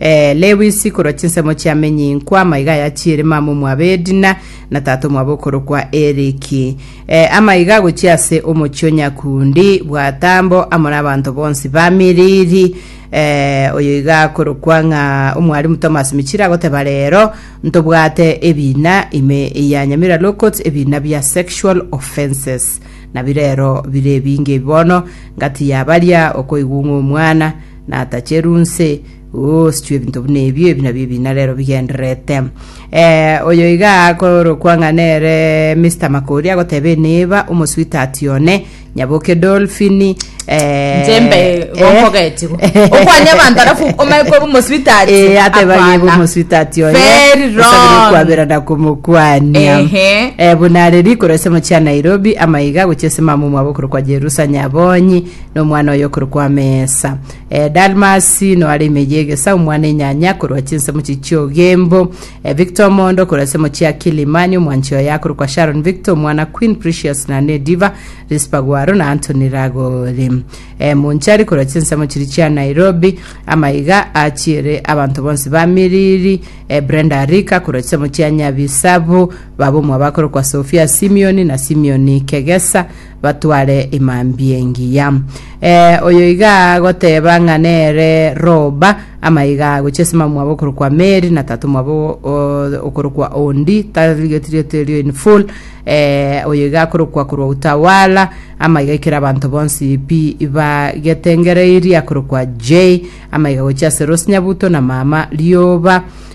Ee, Lewisi, korwa chinsemo chia menyinkwa, amaiga aya chiere mama omwabo Edina, na tata omwabo okorokwa Eriki. Ee, amaiga agochia ase omochie o Nyakundi, bwatambo, amo n'abanto bonsi ba Miriri. Ee, oyo iga akorokwa ng'a Omwalimu Thomas Michiri agoteba reero, ntobwate ebiina ime ya Nyamira Law Courts, ebiina bia sexual offences. Nabi reero bire ebinge ebi bono, ngati ya baria okoigwa ng'a omwana natacheru nse, ooh, sichwe ebinto buna ebio, ebi nabio ebina rero bigendererete. Eh, oyo iga akorokwa ng'a nere Mr. Makori agoteba eneba omosuitat one, nyaboke Dolphin, eh, Njembe eh, gonkogeti go. Okwanya abantu alafu omae kwa omoswitati. Eh, ateba Hapana. gebo omosuitati oye Very osabire wrong. okwabera na komokwania Ehe. Eh, buna are rikoro ase mochia Nairobi amaiga gochia ase mamumu abo okorokwa Jerusa Nyabonyi nomwana oye okorokwa amesa e, dalmasi no are imeye egesa omwana enyanya korwa chinsemo chichiogembo e, victor omondo korwa ase mochie akilimani omwanchi oye akorokwa sharon victor omwana queen precious na nediva rispa gwaro na antony ragori e, monchari korwa chinsemo chiri chia nairobi amaiga achiere abanto bonsi ba miriri e, brenda arika korwa chisemo chia nyabisabu baba omwabo akorokwa sofia simioni na simioni kegesa batware emambia engiya. Eh, oyo iga agoteba ng'a nere Roba, amaiga agochia ase mama mwabo okorokwa Meri, na tata mwabo o- okorokwa Ondi, tarigetwe rieto erio in full, eh, oyo iga akorokwa korwa Utawala, amaiga aikera abanto bonsi pi bagetengereirie, akorokwa Jay, amaiga gochia ase Rose Nyabuto na mama Rioba,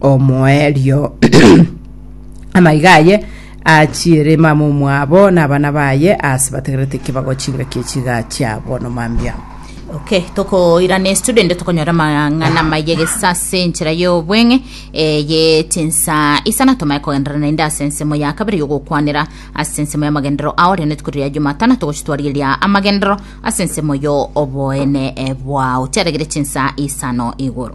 omoerio. Amaiga aye achiere mama omwabo na abana baye ase bategerete ki bago chingaki echiga chiabo nomambia. Okay, tokoirana estudent tokonyora amang'ana maye gesa ase enchera y'obweng'e eye chinsa isana tomaye kogenderera naende ase ensemo ya kabere y'ogokwanera ase ensemo y'amagenderero ao rende tuko riria Jumatano togochitwarigeria amagenderero ase ensemo y'oboene bwao chiaregire chinsa isano igoro.